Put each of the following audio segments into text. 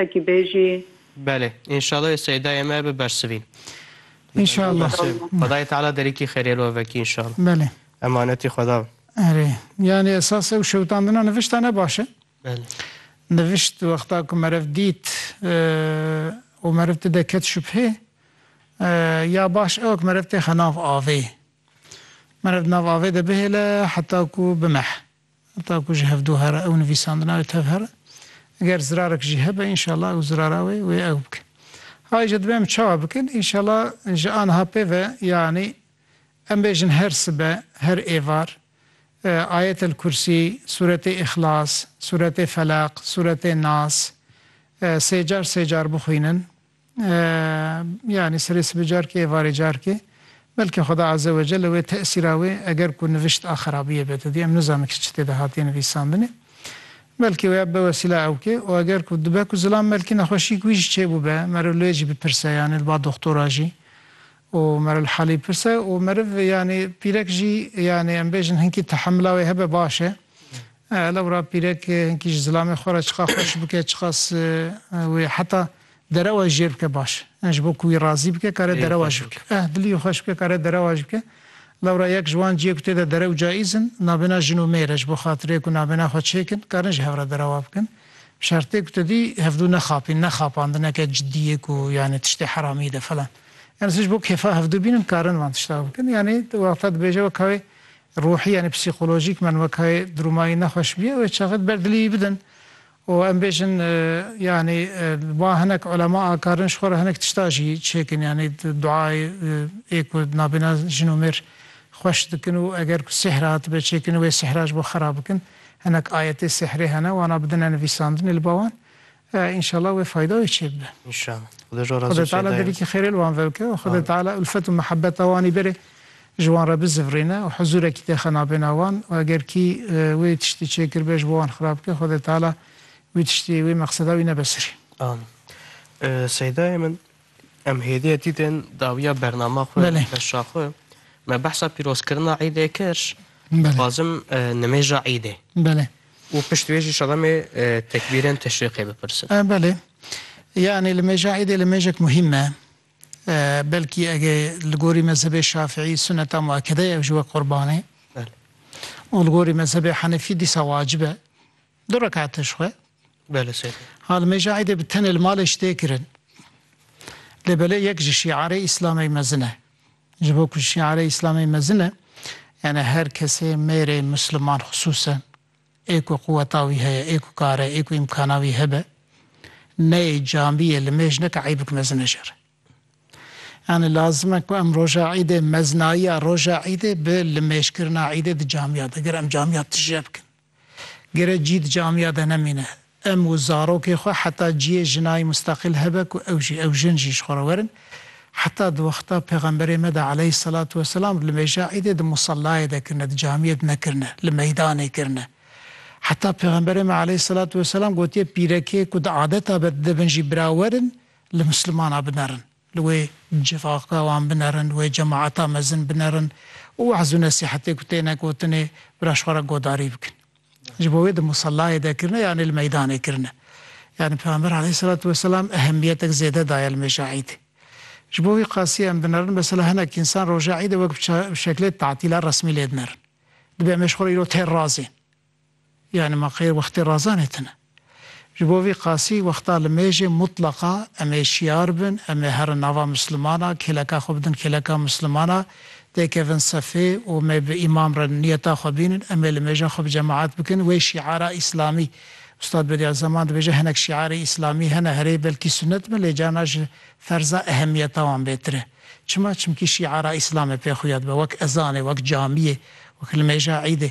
Wekî bêjî. Belê. Înşallah ê seydayê me bibersivîn. Înşallah. Xwedayê Teala derîkî xêrê li we vekî înşallah. Belê. Emanetî Xweda be. Erê. Yanî esas ew şewitandina nivişta ne baş e. Belê. Nivişt wexta ku meriv dît û meriv ti de ket şubhê ya baş ew e ku meriv têxe nav avê. Meriv di nav avê de bihêle heta ku bimeh. Heta ku ji hev do here ew nivîsandina wê tev here. Ger zirarek jî hebe înşallah ew zirara wê wê ew bike. Hay ji dibê em çawa bikin înşallah ji aniha pê ve yanî em bêjin her sibe, her êvar Ayetel Kursî, Sûretê Îxlas, Sûretê Felaq, Sûretê Nas sê car sê car bixwînin. Yanî serê sibê carkê êvarê carkê. Belkî Xweda Azze we Celle wê tesîra wê eger ku nivîşt a xerabiyê be didî. Em nizanin ki çi tê de hatiye nivîsandinê. Belkî wê be wesîla ew ke û eger ku dibe ku zilam belkî nexweşîyek wî jî çêbû be meriv li wê jî bipirse yanî li ba doxtora jî û meriv li halî bipirse û meriv yanî pîrek jî yanî em bêjin hinkî tehemila wê hebe baş e. Hela wira pîrek hinkî ji zilamê xwe re çiqas xweş bike, çiqas wê heta derewa jî jêr bike baş e. Ji bo ku wî razî bike kare derewa jî bike. Eh dilî wî xweş bike kare derewa jî bike. Lewra yek ji wan ciyê ku tê de derew caîz in navbêna jin û mêr e. Ji bo xatirê ku navbêna xwe çêk in karin ji hev re derewa bikin. Bi şertê ku tu dî hevdû nexapîn ne xapandineke cidî yê ku yanî tiştê heramî de filan. Yanî ji bo kêfa hevdû bînin karin van tişta bikin. Yanî wexta dibêje wek hewê Ruhî yanî psîkolojîk men wekayê drûmayî nexweş bîye wê çaxê di ber dilî wî bidin û em bêjin yanî wan hinek ulema akarin ji xwe re hinek tişta jî çêkin yanî duayê ê ku nabêna jin û mêr xweş dikin û eger ku sîhr hatibe çêkirin wê sîhra ji bo xera bikin hinek ayetê sîhrê hene wana bidine nivîsandinê li ba wan Ee înşallah wê fayda wê çê bibe. Înşallah. Xuda ji we razî be. Xwedê Teala derîkî xêrê li wan ve bike û Xwedê Teala ulfet û mihebeta wanî berê ji wan re bizivirîne û huzûrekî tê xe nabêna wan û eger kî wê tiştî çê kiribe ji bo wan xirab bike Xwedê Teala wî tiştî wê meqseda wî nebe serî. Amîn. Seydayê min Em hêdî dîtin dawiya bernama xwe, beşa xwe. Me behsa pîrozkirina îdê kir. Dixwazim nimêja îdê. Belê. Û pişt wê jî şadamê tekbîrên teşrîqê bipirsin. Belê. Yani li mêja îdê li mêjek muhîm me. Belkî ege li gorî mezhebê şafîî suneta muekede ye ew ji we qurban e. Û li gorî mezhebê henefî dîsa wacib e. Du rekate ji xwe. Bele sey. Ha li mêja Eidê bi tenê li malê ji tê kirin. Lê belê yek ji şiarê Îslamê mezin e. Ji bo ku şiarê Îslamê mezin e, yanî her kesê mêrê Musliman xisûsen ê ku quweta wî heye, ê ku kar e, ê ku îmkana wî hebe, neyê camiyê li mêj neke eî bik mezin e ji re. Yanî lazim e ku em roja Eîdê meznayiya roja Eîdê bi li mêj kirina Eîdê di camiya de gir em camiya tije bikin. Gere cî di camiya de nemîne. Em û zarokê xwe heta ciyê jinayî musteqîl hebe ku ew jî ew jin jî ji xwe re werin. Heta di wexta pêxemberê me de aleyh selat we selam li mêja îdê di musallayê de kirine, di camiyê de nekirine, li meydanê kirine. Heta pêxemberê me aleyh selat we selam gotiye pîrekê ku di adeta be dide bin jî bira werin li muslimana binerin. li wê civaka wan binerin, wê cemaeta mezin binerin û we'z û nesîhetê ku têne gotinê bira ji xwe re godarî bikin. Ji bo wê di musallayê de kirine yanî li meydanê kirine. Yanî Pêxember aleyhîsselatu weselam ehemîyetek zêde daye li mêja Îdê. Ji bo vî qasî em binerin mesela hinek însan roja Îdê wek bi şeklê tatîla resmî lê dinerin. Dibê em ê ji xwe re îro têr razên. Yanî ma qey wextê razanê tune. Ji bo vî qasî wexta li mêjê mutlaqa em ê şiyar bin, em ê herin nava Mislimana, kêleka xwe bidin kêleka Mislimana, tê kevin sefê û me bi îmam re niyeta xwe bînin, em ê li mêja xwe bi cemaet bikin, wê şiara îslamî, Ustad Bedi'a Zaman dibêje hinek şiarê îslamî hene herê belkî sunet bin lê carna ji ferza ehemiyeta wan bêtir e. Çima? Çimkî şiara îslam e pê xuya dibe wek ezanê, wek camiyê, wek li mêja îdê.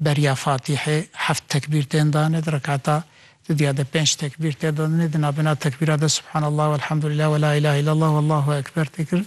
Beriya Fatîhê heft tekbîr tên dane, di rekata duduya de pênc tekbîr tê dane, di navbêna tekbîran de Subhanallah welhamdulillah welâ îlâhe îllellah wellâhu ekber tê kirin.